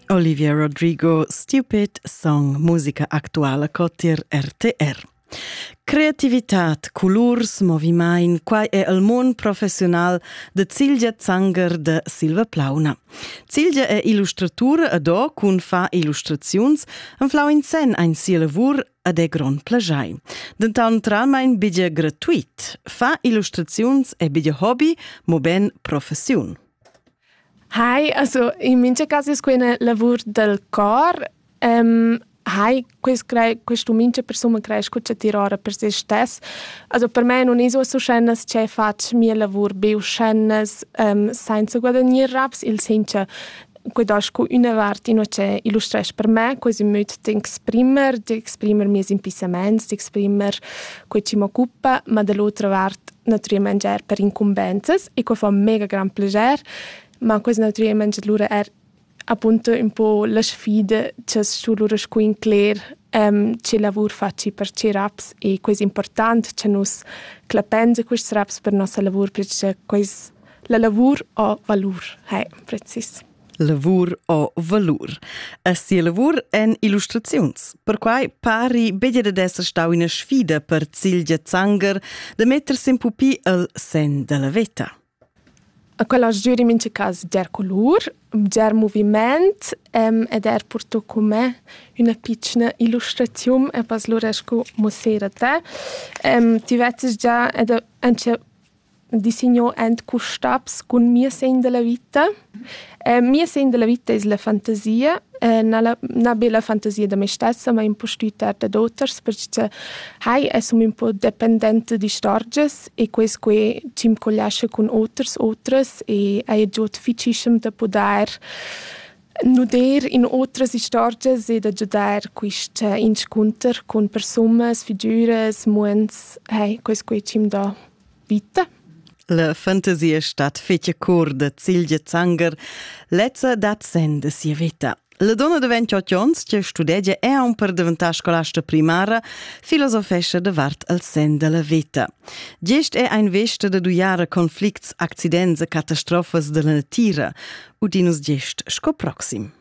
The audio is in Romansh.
Olivier Rodrigo, stupid song, musica actuala cotir RTR. Creativität, colurs, movimain, quai è il mund professional de Cilgia Zanger de Silva Plauna. Cilgia è illustratura ad o cun fa illustraziuns en flau in sen ein sia lavur ad è grond plagiai. Dental naturalmein biglia gratuit. Fa illustraziuns è biglia hobby, mo ben professiun. Hai, also in mincha cas es quai üna lavur dal cor. Ehm, hai, quest crei questa mincha persun creescha cun tschattir ora per se stess. Also per me nun es uossa uschennas che fatsch mia lavur be uschennas, ehm, sainza guadagnir raps, il sencha quai do scu üna vart inua che illustresch per me quasi ün möd d'exprimer, d'exprimer mieus impissamaints, d'exprimer quai chi m'occupa, ma da l'otra vart nutrì mangiar per incumbensas e quai fa mega gran plascher, ma quest nutrì mangiar lura er appunto un po la sfida che su lura scu incler um, che lavur faci per che raps e quest important che nus clapenza quest raps per nossa lavur perché quest la lavur o valur, hai precis. Lavur o valur. A sia lavur èn illustraziuns. Perquai pari beglia dad esser stau ina sfida per Cilgia Zanger da mettersi in pupi al sen dalla veta. A quella giuri in mince cas der colur, der moviment um, ed er porto con me una piccina illustrazione e pas lura sco mossera te. Um, ti vezzes già ed anche di signò ent custabs cun mia segn della vita. Eh, mia segn della vita es la fantasia, eh, na, la, na be la fantasia da me stessa, ma un po stüttar dad oters, perche hai es un po dependente d'istorgias e quest que chi'm collascha cun oters, otras e haja giò difficischem da pudair Nuder in otras istorgias e da giudair quist eh, inscunter cun persunas, figüras, muonds, hey, quais qui chi'm dà vita. La fantasia stat fece cor da Cilgia Zanger, lezza dat sen da sia vita. La donna de 28 onns, che studegia e aun per diventare scolasta primara, filosofesce davart al sen della vita. Gest è ein vesta da duiara conflicts, accidents e catastrofas dalla natira, udinus gest sco proxim.